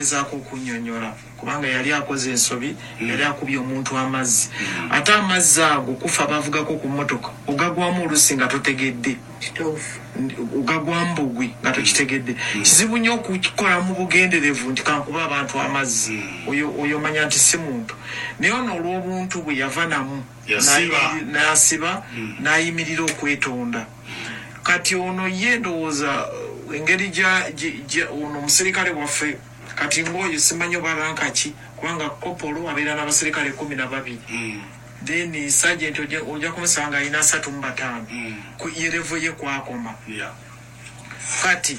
Agezaaku okunyonyola kubanga yali akoze ensobi, yali akubye omuntu amazzi ate amazzi ago kufa bavugaku ku mmotoka ogagwamu oluusi nga totegedde. Kituufu. Ogagwamu bugwi nga tokitegedde. Kizibu nnyo okukola mu bugenderevu nti kankube abantu amazzi. Oyo oyo manya nti si muntu. Naye ono olw'obuntu bwe yava namu n'ayimirira n'ayimirira okwetonda. Kati ono ye ndowooza engeri ja, ja, ono muserikale waffe, kati ng'oyo simanyi oba ranka ki, kubanga kopolo abeera n'abaserikale kkumi na babiri, then sajenti oja, oja kumusanga alina asatu mu bataano, ku, ye levo ye kw'akoma. Kati,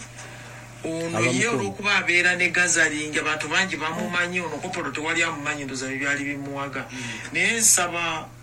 ono ye olw'okuba abeera ne gazaringi, abantu bangi bamumanyi, ono kopolo tewali amumanyi, ndowooza bye byali bimuwaga. Naye nsaba.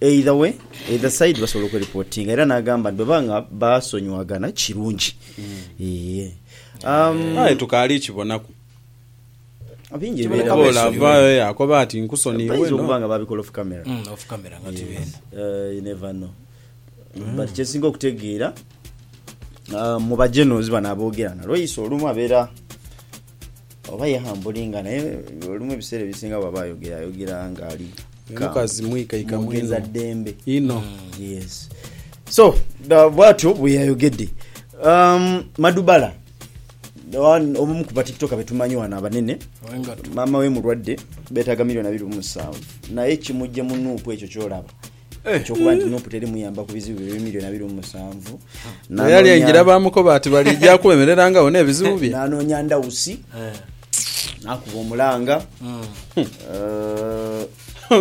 Either way, either side basobola okweripotinga era n'agamba nti bwebaba nga baasonyiwaghana kirungi. Yee. Um, Aye tukaali kibonaku. bingi Kibonaku ebibeerawo. Paul Abesonyiwe. avaayo yaakoba ati nkusoniiwe Bayinza no. okuba nga baabikola off camera. Mm, off camera nga tuli Yes. eno. Eh, you never know. But kye nsinga okutegeera ah, mu ba generals bano aboogera nalwo eisi olumu abeera Oba ye hambulinga naye olumu ebiseera ebisinga bwaba ayogera ayogera nga ali mukazi mwikaika mwogeza dembe ino mm, yes so bwatyo bweyayogedde um, madubala obumu ku batiktoka betumanyi wano abanene maama we mulwadde betaga milioni abiri musanvu naye kimujje munuupu ekyo kyolaba Eky'okuba nti nup teri muyamba ku bizibu bye by'emilioni abiri mu musanvu Bwe yali aingira baamukoba ati baliija kwemererangawo n'ebizibu bye. n'anoonya ndawusi n'akuba omulanga Eh,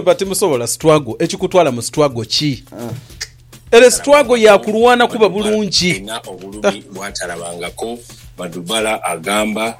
But timusobola struggle. Ekikutwala mu struggle ki? Ere struggle ya kulwana kuba bulungi. Alina obulumi bwatalabangako, Madubala agamba.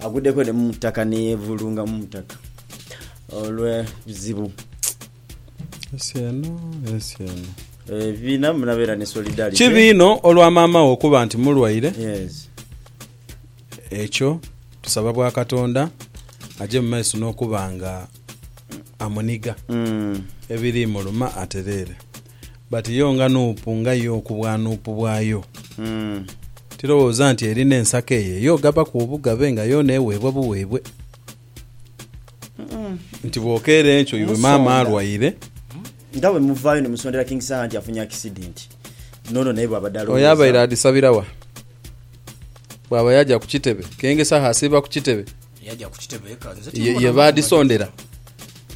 Agudeko ne mu ttaka ne yeevulunga mu ttaka olw'ebizibu. Ensi eno, ensi eno. Ebibiina munabeera ne solidarity. Kibi inho olwa maama wo okuba nti mulwaire. Yes. Ekyo tusaba bwa Katonda aje mu maiso n'okuba nga amuniga ebiriimuluma atereere. But yo nga nuupu nga yo okubwa nuupu bwayo, tilowooza nti erina ensako eyo ey'ogabaku obugabe nga yoona eweebwa buweebwe. Nti bw'okeera enkyo iwe maama alwaire. Nga bwe muvaayo ni musondera King Saha nti afunye akisidenti, n'ono naye bw'abadde alowooza. Oyo abaire adhisabira wa? Bw'aba yaja ku kitebe, King Saha asiiba ku kitebe? Ye baadhisondera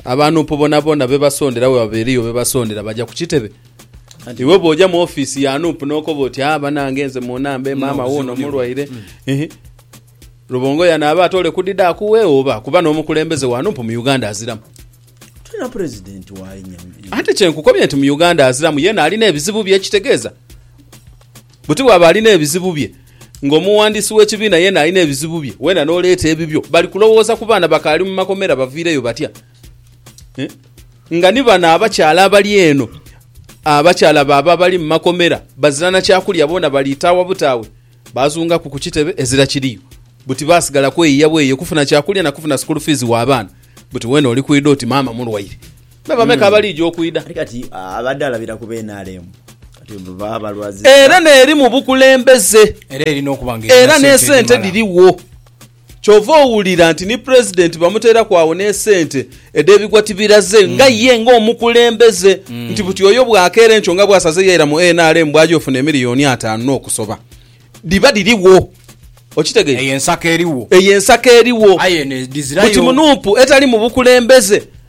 abanuupu boonaboona bebasondera bwe baba eriyo bebasondera baja ku kitebe iwe bwoja mu offiisi ya nuupu nokoba oti a ah, banange nze munambe maama wuuno mulwaire mm-hmm. lubongo yanaaba ate ole kudida akuwe oba kuba n'omukulembeze wa nuupu mu uganda aziramu ate kyenkukobye nti mu uganda aziramu yena alina ebizibu bye ekitegeeza Buti bw'aba alina ebizibu bye, ng'omuwandiisi w'ekibiina yeena alina ebizibu bye, weena n'oleeta ebibyo, bali kulowooza ku baana bakaali mu makomera baviireyo batya? Nga ni bano abakyala abali eno, abakyala baabo abali mu makomera bazira na kya kulya boona baliitaawa butaawe. Baazungaku ku kitebe ezira kiriyo. Buti baasigala kweyiya bweyiye kufuna kya kulya na kufuna sikulu fiizi w'abaana. Buti weena oli kwidha oti maama mulwaire. Me bameka abaliija okwidha? Era n'eri mu bukulembeze era n'esente dhirigho. Kyova owulira nti ni Pulezidenti bamuteeraku agho n'esente edh'ebigwa tibiraze nga ye ng'omukulembeze nti buti oyo bwakeera enkyo nga bwasaze yaira mu nrm bwaja ofuna emiliyoni ataanu n'okusoba. Dhiba dhirigho. Okitegeire? Eyo ensako erigho. Eyo ensako erigho. Aye eno edhizirayo. Buti mu nup etali mu bukulembeze.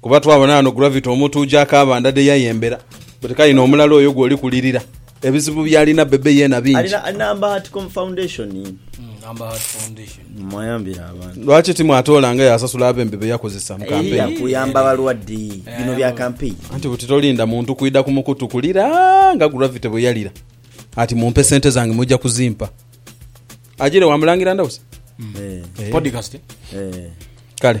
Kuba twabona ghano Gravity omutuuja akaabanda dhe yayembera but kale no omulala oyo gwoli kulirira ebizibu byalina Bebe yeena bingi. Alina Number Heartcom Foundation. Mwayambire abantu. Lwaki timwatoola nga yasasula abembe be yakozesa mu kampeyini? Eya kuyamba balwadde. Bino bya kampeyini. Anti buti tolinda muntu kwidha ku mukutu kulira nga Gravity bwe yalira ati mumpe sente zange muja kuzimpa. Ajire wa Mulangira Ndausi? Eeh. Podcast. Kale.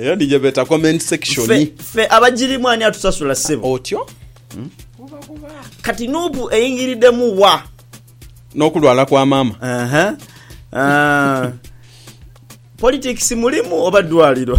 eyo niyo beta comment section fe, fe abagirimu ani atusasula sebo otyo hmm? kati nupu eyingiridemu wa nokulwala kwa mama uh -huh. uh, politics mulimu oba dwaliro